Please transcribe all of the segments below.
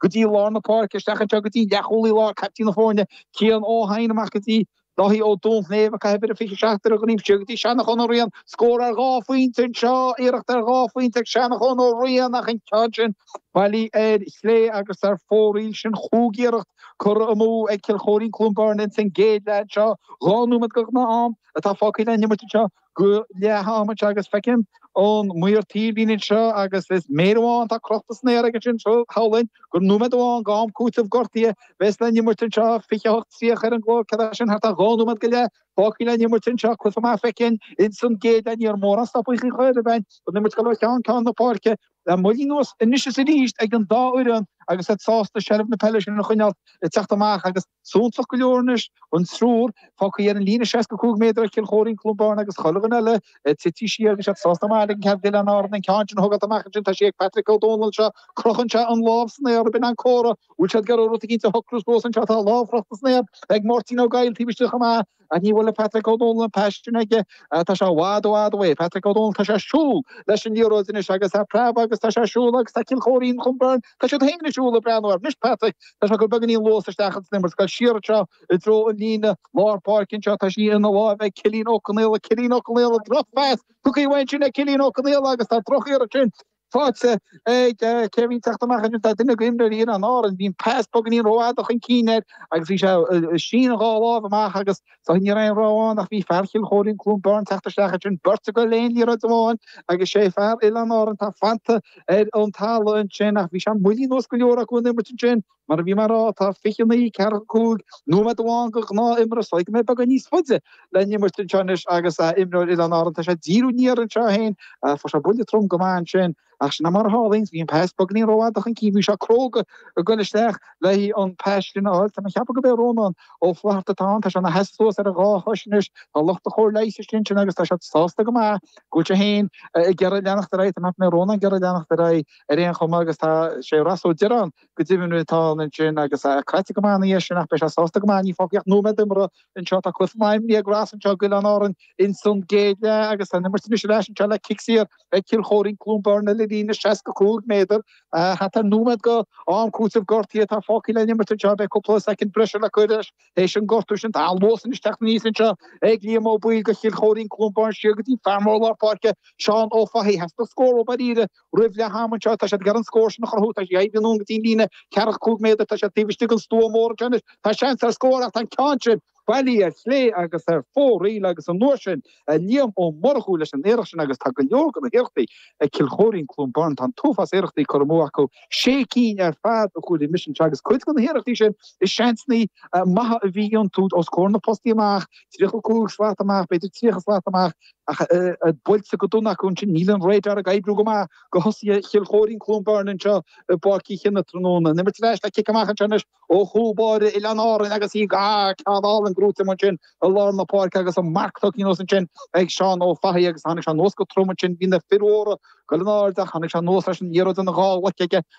go dtí lár na páirce, isteach anseo go dtí leathchúlaí láir, caiptín na foirne, Cian Ó hEidhin, amach go dtí Dáithí Ó Duinnshléibhe, ag caitheamh uimhir a 27 ar a dhroim isteach, go dtí Seanachán Ó Riain, scór ar dhá phointe anseo, iarracht ar dhá phointe ag Seanachán Ó Riain ach an ceann sin bailí ar chlé agus ar fóraoil sin chúig iarracht curtha amú ag Cill Chóirín-Cluain Bheirn insan gcéad leath anseo, dhá nóiméad go gnáth-am atá fágtha le n-imirt anseo. Go leath-am anseo agus feicim ón maor taobhlíne anseo agus is mér amháin atá crochta san aer aige anseo shamhlóinn gur nóiméad amháin go am cúiteamh gortaithe a bheas le n-imirt anseo 28 30 ar an gclog sin thart ar dhá nóiméad go leith fágtha le n-imirt anseo cluife maith feicthe againn ins an gcéad leath ní raibh mórán stopadh curtha i bhfeidhm don imirt go leor ceann ceann na páirce le moilliú anuas anois is arís ag an dá fhoireann agus iad sásta seilbh na peile sin a choinneáilt ag teacht amach agus Suntasach go leor anois, an triúr fágthaí ar an líne 65 méadar ag Cill Chóirín, Cluain Bheirn agus chuile dhuine eile tite siar agus iad sásta go maith ligean cead d'Oileáin Árann an ceann sin a thógáilt amach ansin. Tá sí ag Patrick Ó Dónaill anseo. Crochann sé an lámh san aer b'in an comhartha. Bhfuil siad ag iarraidh rud eicínt a shocrú suas anseo? Tá lámh crochta san aer ag Máirtín Ó Goill taobh istigh chomh maith. An ní bhfuil le Patrick Ó Dónaill an pas sin aige? Tá sé i bhfad i bhfad uaidh. Patrick Ó Dónaill, tá sé ag siúl leis an liathróid anois agus tá preab aige agus tá sé ag siúl agus tá Cill Chóirín Cluain Bheirn, tá siad féin ag siúl ag breathnú air. Anois Patrick, tá sé ag cur beagáinín luas isteach ins an imirt ag goil siar anseo i dtreo an líne lár páirce anseo, tá sí ina láimh ag Cillín Ó Conaola, Cillín Ó Conaola drochphas tugtha uaidh ansin ag Cillín Ó Conaola agus tá drochiarracht sin Faighte ag cé a bhíonn ag teacht amach anois, tá duine go imreoirí Oileáin Árann, bhí an pas beagáinín rófhada chun cinn air agus bhí sé ag síneadh dhá láimh amach agus sa chaoi nach raibh aon rogha ann ach bhí fear Chill Chóirín, Cluain Bheirn, ag teacht isteach ansin, beirt acu le haghaidh aon liathróid amháin agus sé fear Oileáin Árann atá fanta ar an talamh ansin ach bhí sé mailíseach go leor acu an imirt ansin. Mar a bhí mé a rá, tá 29 45 nóiméad amháin go gnáth-imirt, is dóigh go mbeidh beagán níos faide le n-imirt anseo anois agus imreoir Oileáin Árann, tá sé ag díriú aniar anseo féin, fuair sé buille trom go maith ansin, ach sin mar a tharlaíonn, bhí an pas beagáinín rófhada chun cinn, bhí sé cróga a goil isteach le haghaidh an pas sin a fháil. Tá mé ceapadh go b'é Rónán Ó Flatharta atá ann, tá sé ina sheasamh suas ar a dhá chois anois, tá lucht an chóir leighis istigh ansin agus tá siad sásta go maith go bhfuil sé féin ag iarraidh leanacht ar aghaidh, tá mé ceapadh go mbeidh Rónán ag iarraidh leanacht ar aghaidh ar aon chuma agus tá sé Ross Ó Direáin Go deimhin, atá ansin agus é craite go maith ina dhiaidh sin, ach beidh sé sásta go maith, níl fágtha ach nóiméad imeartha anseo, tá cluife maith ag Ross anseo go Oileán Árann ins an gcéad leath agus tá an imirt anois ar ais anseo le cic saor ag Cill Chóirín, Cluain Bheirn ar líne 65 méadar, thart ar nóiméad go am cúiteamh gortaithe atá fágtha le n-imirt anseo, beidh cúpla soicind breise le cur leis théis an gortú sin, tá an luas anois teacht aníos anseo ag Liam Ó Baoill go Chill Chóirín, Cluain Bheirn siar go dtí fear mór lár páirce Seán Ó Fathaigh, theastaigh scór uathub dáiríre Roimh leath ama anseo, tá siad ag iarraidh an scór sin a chruthú, tá siad imithe anonn go dtí an líne ceathracha cúig méadar, tá siad taobh istigh den stua mór anseo anois, tá seans ar scór ach tá an ceann sin bailithe ar chlé agus ar fóraoil agus an uair sin, Liam Ó Murchú leis an iarracht sin agus tá go leor de na hiarrachtaí ag Cill Choirín-Cluain Bheirn, tá an t-uafás iarrachtaí curtha amú acu, sé cinn ar fad a chomhair mise anseo agus cuid de na hiarrachtaí sin, is seansannaí maithe a bhí iontu os comhair na bpostaí amach, tríocha cúig slat amach, b'fhéidir tríocha slat amach. Ach buailte go dona acu ansin, níl an radar ag oibriú go maith do thosaithe Chill Choirín-Cluain Bheirn anseo i bPáirc Uí Chionnaith tráthnóna. An imirt ar ais le cic amach anseo anois ó chúl báire Oileáin Árann agus í dhá ceann álainn gnóite amuigh ansin i lár na páirce agus an marc tugtha anuas ansin ag Seán Ó Fathaigh agus tháinig sé anuas go trom ansin. Bhí na fir mhóra go léir in airde, tháinig sé anuas leis an liathróid ina dhá ghlaic aige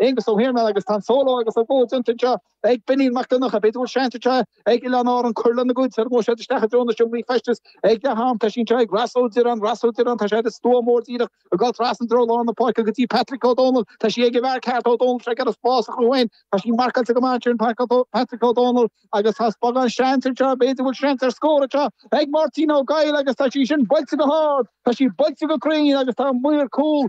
Aonghus Ó hIarnáin agus tá an solo agus an go déanta seo ag Benín Mac Donncha. B'fhéidir go bhfuil seans anseo ag Oileáin Árann cur lena gcuid, sula ngabhfaidh siad isteach i dtreo na seomraí feistis ag leath am. Tá sí ag Rossa Ó Direáin, Rossa Ó Direáin, tá sé ar an stua mór díreach ag dul trasna i dtreo lár na páirce go dtí Patrick Ó Dónaill. Tá sí ag a bhfear ceart Ó Dónaill anseo ag iarraidh spás a chruthú dó féin. Tá sí marcáilte go maith ansin in Páirc Patrick Ó Dónaill agus tá beagán seans anseo, b'fhéidir go bhfuil seans ar scór anseo ag Máirtín Ó Goill agus tá sí sin buailte go hard, tá sí buailte go cruinn agus tá an maor cúl